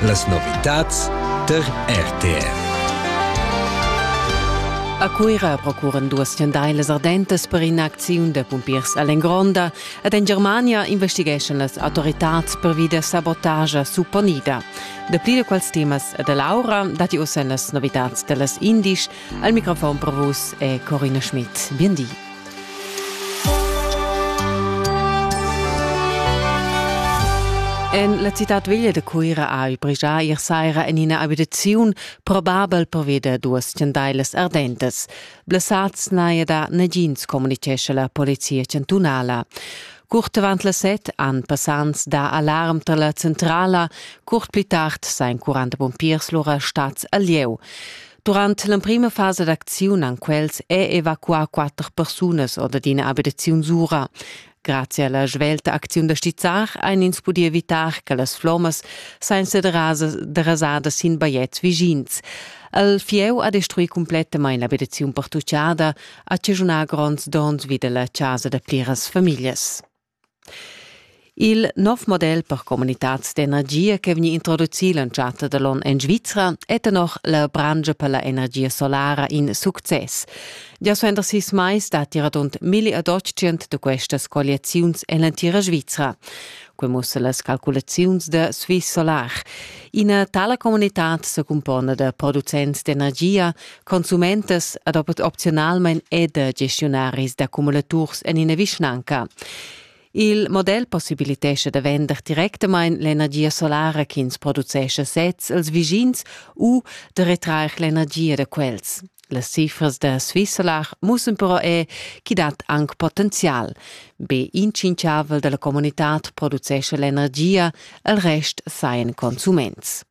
Las novitads der RTR. A Cuira procuran duas schendailas ardentas per in'acziun da pumpiers all'Engronda ed en Germania investigeschan las autoritads pervi da sabotagia supponida. Dapli da quels temas e da Laura datti ossa en las novitads da las Indisch. Al microfon per vus è Corina Schmidt. Bien di. En la citad veglia da Cuira ha il brigià ier saira en ina abitaziun probabel pervida duas chandailas ardentas. Blessads n'haja da nagins, communitgescha la polizia chantunala. Curt avant las set han passants dà alarm tar la centrala. Curt pli tard sajan 40 pumpiers lura stads al lieu. Durant l'emprima fasa d'acziun han quels è evacuà quatter persunas or d'ina abitaziun sura. Grazie alla svelta acziun da stizzar ein ins pudi evitar che las flommas senza derasada sin bajetgs vischins. El fieu ha destruì complettamain l'abitaziun pertuccada, ha chaschunà gronds donns vid la chasa da pliras famiglias. Il nov model per communitads d'energia che vegni introducì l'entschatta da l'onn en Svizra è tenor la brangia per la energia solara in success. Gia suenter sis mais datti radund milli ad otschient da questas colliaziuns en l'entira Svizra. Quei mussa las calculaziuns da Swiss Solar. Ina tala comunitad se cumpona da producents d'energia, Consumentas ad opzionalmein ed gestiunaris d'accumulaturs en ina vischnanca. Il model possibilitescha da vender directamain l'energia solara ch'ins producescha sez als vischins u da retrair l'energia da quels. Las cifras da Swissolar mussen però è chi dat anc potenzial. Be in tschinchavel da la comunitad producescha l'energia, il rest sajan consuments.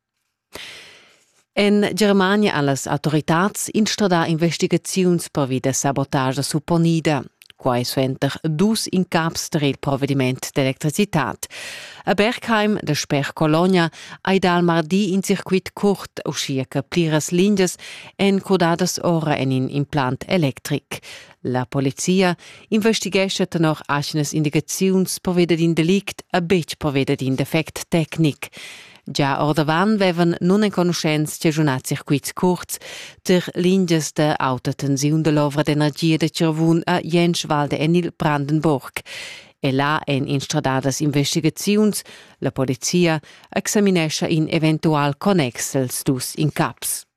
En Germania ha las autoritads instradà investigaziuns pervi da sabotagia supponida. Quai suenter dus incaps tar il provediment d'electricitad. A Bergheim, da sper Colonia, hai dal mardi in circuit curt, uschia che pliras lingias èn codadas ora en in implant electric. La polizia investighescha tenor atgnas indicaziuns perveda d'in delict e betg perveda d'in defect tecnic. Gia ordavant vevan nunenconuschents chaschunà circuits curts tar lingias da auta tensiun da l'ovra d'energia da Cervun a Jenschwalde en il Brandenburg. E là èn instradadas investigaziuns. La polizia examinescha in eventual connex els dus incaps.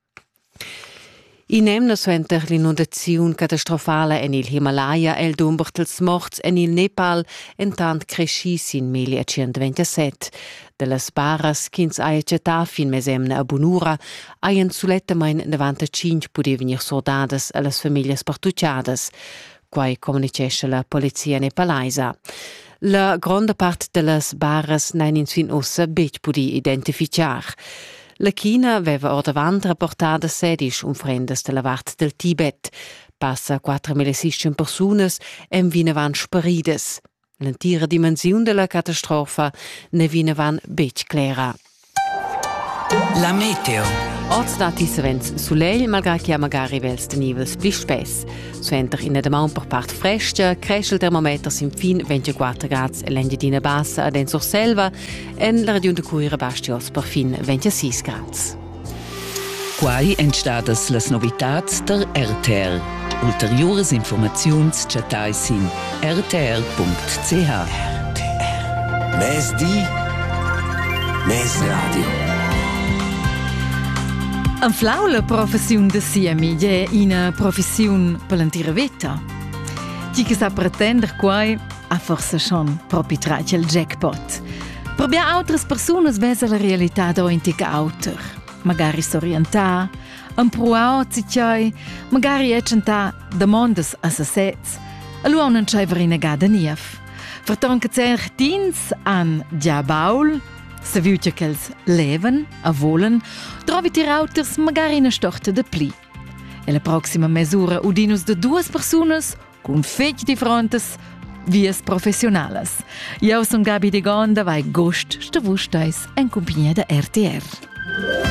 In'emna suenter l'inundaziun catastrofala en il Himalaya è il dumber dals morts en il Nepal entant creschì sin 1127. Da las baras ch'ins haja chattà fin mesemna a bunura hajan sulettamain 95 pudì vegnir surdadas a las famiglias partuchadas. quai communitgescha la polizia nepalaisa. La gronda part dellas baras n'han ins fin ussa betg pudì identifichar. La China aveva ordavant rapportà da sedisch unfrendas dalla vart del Tibet. Passa 4.600 persunas èn vinavant sparidas. L'entira dimensiun della catastrofa ne vinevan betg clera. La meteo. Oz datti savens sulegl, malgrà che ha magari vels tenivels pli spess. Suenter ina damaun per part frestga cresce il termometer sin fin 24 grads en l'Engiadina Bassa ad en Surselva, en la regiun da Cuira basti oz per fin 26 grads. Quai èn stadas las novitads tar RTR. Ulteriuras informaziuns chattai sin rtr.ch. Mezdi, mezradio. Anflau la professiun da siemi è ina professiun per l'entira veta. Ti che sa pretender quai, ha forse schon propi tratg il jackpot. Per bia outras persunas vesa la realità auntic auter. Magari s'orientà, empruau a tgei, magari è tschentà damondas a sesez, allora non c'aveva rinegada niev. Verton che zer ch'ins han già baul, se viu che quels leven, a volen, trovi tir auters magari una storta de pli. E la proxima mesura udinus de duas persunas cun fetg differentas vias professionalas. Eu sun Gabi Degon da vai gost sta vus stais en cumpagnia da RTR.